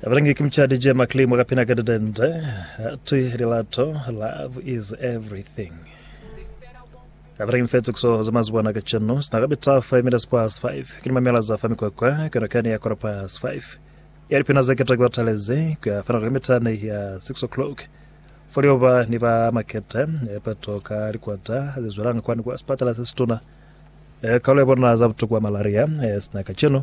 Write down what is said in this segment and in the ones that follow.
Abalangi ki mucadi je Mark Lee mwakapina ka didende ati lilato love is everything. Abalangi mfetu kuso za mazibona ka chenu sina ka bita 5 minutes past 5 kini mamela za fa mikwakwa kana kani ya quarter past 5 ya lipina za keta kwa taleze kwa fana kwa mitani ya 6 o'clock folio ba ni ba makete epato ka likwata zizwelanga kwani kwa spatala sesituna e kalo bona za butuku wa malaria e sina ka chenu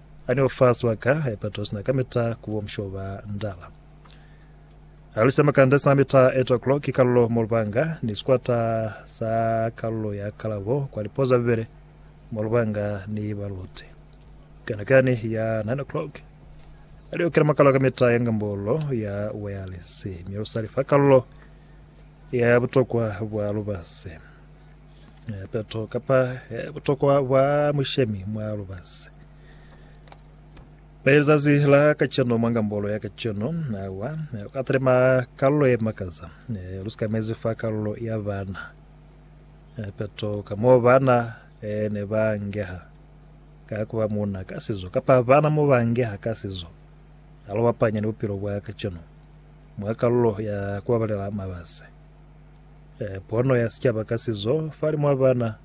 Ani o fa swa ka epato sina kamita ku bo musho ba ndala. A lusa makanda sina mita eto klo ki kalulo mo lubanga ni sikwata sa kalulo ya kalabo kwa lipo za Bibele mo lubanga ni baluti. Kana kani ya nine o'clock a li okela makalo kamita ya ngambolo ya wayalesi mi a lu sali fa kalulo ya butokwa bwa lubasi. Peto kapa butokwa bwa mushemi mwa lubazi. Zazi la kaceno mwa ngambolo ya kaceno awa ka telema kalulo ye makaza lu sikamezi fa kalulo ya bana peto ka mo bana ne ba ngeha ka kuba muna ka sizo kapa bana mo ba ngeha ka sizo alo bapanya ni bupilo bwa kaceno mwa kalulo ya kubabalela mabazi E, pono ya sicaba ka sizo falimu a bana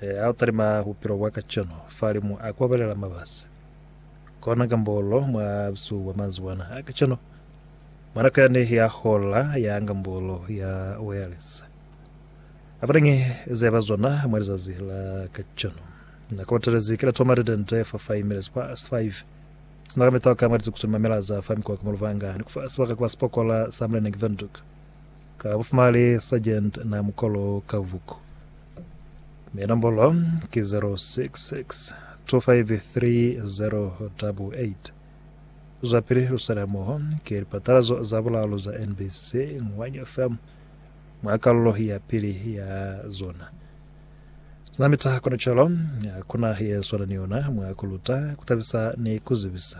e, a talima bupilo bwa kaceno falimu a kwabalela mabasi kona kambolo mwa busu bwa manzibwana a kaceno mwanako yani ya hola ya ngambolo ya wireless abalengi ze ba zona mwa lizazi la kaceno nako batelezi kila toma redente for 5 minutes past 5 sina ka mitoka mwa lizukusu mamela za fa mikwa ka muluvanga ni kufa sibaka kwa sipokola sa mlenengi venduka Ka bufumali Sergeant na mukolo ka vuku. Mi nombolo ki 066 253088. Zwapili luswela moho ki lipatalazo za bulalu za NBC Ngwanyo FM mwa kalulo ya pili ya zona. Zinamita kono calo, hakuna ye swana ni yona mwa kuluta, kutabisa ni kuzibisa.